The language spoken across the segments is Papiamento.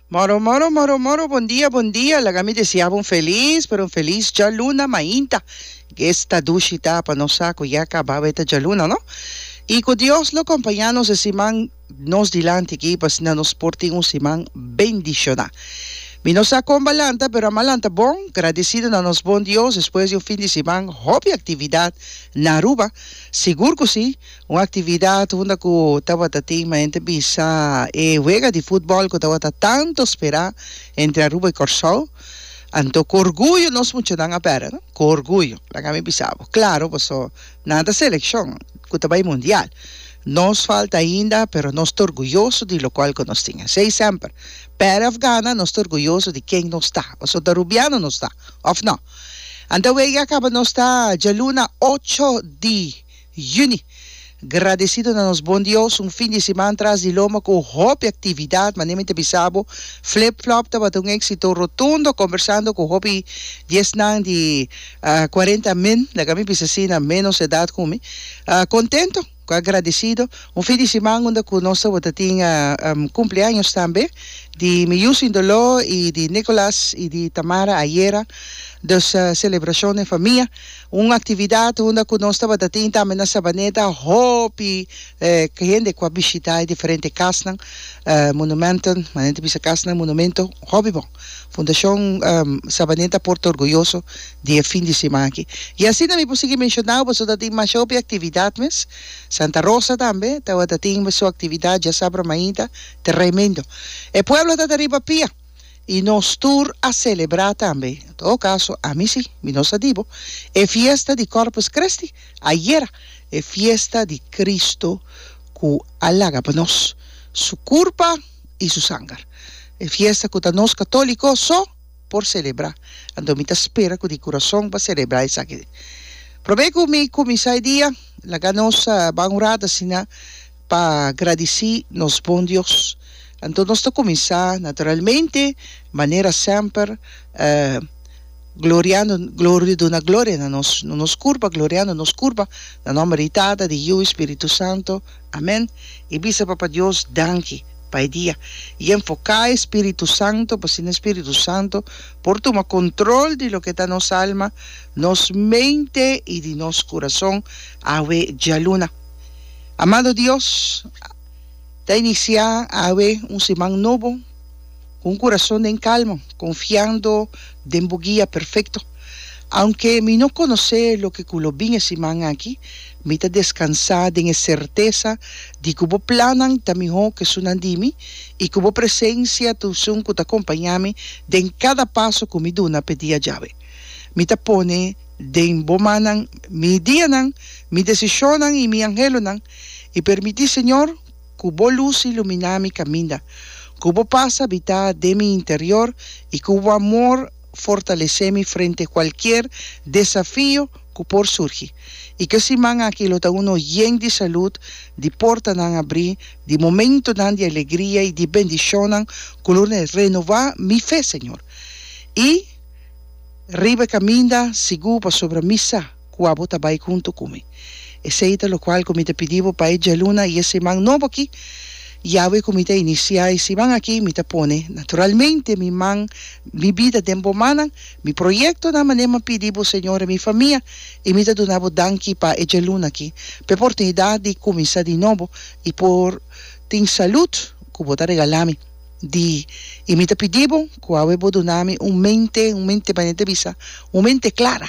Moro moro moro moro bon dia bon dia laga mi deseabo un feliz pero un feliz djaluna mainta guest ta dushi ta pa nos sa cu ya caba beta djaluna no y cu Dios lo compaña nos e siman nos dilanti aki pa asina nos por tin un siman bendiciona mi no sa con ba lanta pero a mas lanta bon gradecido na nos bon Dios despues di un fin di siman hopi actividad na Aruba sigur cu si. Un actividad unda cu tabata tin maente bisa e wega di futbol cu tabata tanto spera entre Aruba y Corsou. Anto cu orguyo nos muchanan a bera, no? Cu orguyo. Laga mi bisa bo. Claro, paso nan ta seleccion cu ta bay mundial. Nos falta ainda, pero nos ta orguyoso di locual cu nos tin. Esey semper. Perde of gana, nos ta orguyoso di ken nos ta. Paso ta Rubiano nos ta, of no? Anta wega a caba nos ta djaluna ocho di. Juni. Gradesido na nos Bon Dios, un fin di siman tras di loma cu hopi actividad, manera mi ta bisa bo, Flip Flop tabata un exito rotundo, conversando cu hopi di esnan di cuarenta min, laga mi bisa asina, menos edad cu mi, contento cu agradecido, un fin di siman unda cu nos tabata tin cumpleaños tambe di mi yu sin dolor y di Nicolas y di Tamara ayera, dus celebracion den famia. Un actividad unda cu nos tabata tin tambe na Sabaneta hopi hende cu a bishita e diferente casnan, monumenten, manera ta bisa casnan, monumento, hopi bon. Fundacion Sabaneta por ta orguyoso di e fin di siman aki. Y asina mi por sigui mencionau pasobra ta tin masha hopi actividad mes. Santa Rosa tambe tabata tin su actividad diasabra mainta tremendo. E pueblo ta ta riba pia. i nos tur a selebrá tambe, en todo kaso ami si, mi no sa di bo, e fiesta di Kòrpus Kristi, ayera, e fiesta di Kristu ku a laga pa nos Su kurpa i Su sanger, e fiesta ku ta nos katóliko so por selebrá. Anto mi ta spera ku di kurason pa selebrá esaki. Promé ku mi kuminsá e dia, laga nos ban un rat asina. Pa gradici nos bon Dios. Anto nos ta cuminsa, naturalmente, manera semper, gloriando, gloria, duna gloria na nos, na nos curpa, gloriando nos curpa, na nomber di Tata, di Yiu, i Spiritu Santo. Amen. I bisa Papa Dios danki pa e dia, i enfoca e Spiritu Santo, pa asina e Spiritu Santo por tuma control di loke ta nos alma, nos mente i di nos curason awe djaluna. Amado Dios, ta iniciá awe un siman nobo cu un curason den calma, confiando den bo guia perfecto. Aunke mi no conocé loke cu lo bin e siman aki, mi ta descansá den e certeza di cu bo plannan ta mihó cu esunnan di mi i cu bo presencia ta esun cu ta acompañami den cada paso cu mi duna p'e dia djawe. Mi ta pone Den bo mannan mi dianan, mi desishonnan i mi anhelonan, i permití, Señor, ku bo lus iluminá mi kaminda, ku bo pas habitá den mi interior i ku bo amor fortalesé mi frente kualkier desafio ku por surgi. I ke siman aki lo ta uno yen di salud, di portanan abrí, di momentunan di alegria i di bendishonnan ku lo renová mi fe, Señor. I. Riba e kaminda, sigu pasobra mi sa ku abo ta bai huntu ku mi. Esei ta lokual ku mi ta pidi bo bai djaluna i e siman nobo akí. Yawe ku mi ta inisiá e siman akí, mi ta pone, naturalmente, mi man, mi bida den bo mannan, mi proyektonan, manera mi a pidi bo, Señor, i mi famia, i mi ta duna bo danki pa e djaluna akí, pa e oportunidat di kuminsá di nobo i por tin salud ku bo ta regala mi. di, i mi ta pidi bo ku awe bo duna mi un mente, un mente manera ta bisa, un mente klara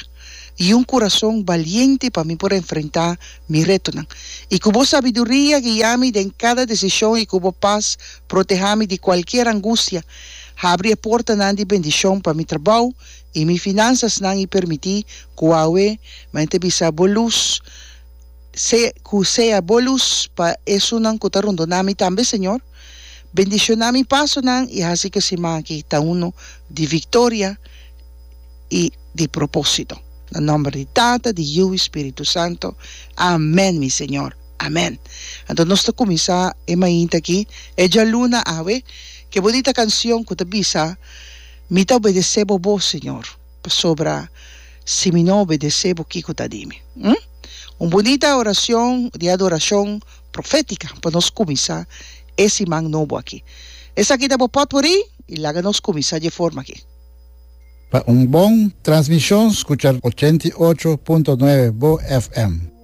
i un kurason baliente pa mi por enfrentá mi retonan, i ku bo sabiduria guia mi den kada desishon i ku bo pas protehá mi di kualkier angustia. Habri e portanan di bendishon pa mi trabou i mi finansasnan i permití ku awe manera ta bisa bo lus sea ku sea bo lus pa esunnan ku ta rondoná mi tambe, Señor. Bendishoná mi pasonan i hasi ku semana aki ta unu di viktoria i di propósito. Na nòmber di Tata, di Yiu i Spiritu Santu. Amèn, mi Señor. Amèn. Anto nos ta kuminsá e mainta aki, e djaluna awe, ku e bonita kanshon ku ta bisa, Mi ta obedesé bo bo, Señor, pasobra si mi no obedesé bo kiko ta di mi? Hm? Un bonita orashon di adorashon. profética pa nos cuminsa e siman nobo aki. Esaki ta bo pot por ey y laga nos cuminsa dje forma aki. Pa un bon transmision scucha ochenta i ocho punto nueve bo FM.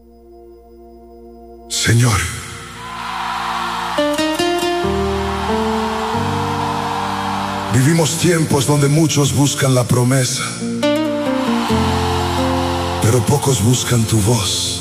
Señor. Vivimos tiempos donde muchos buscan la promesa, pero pocos buscan tu voz.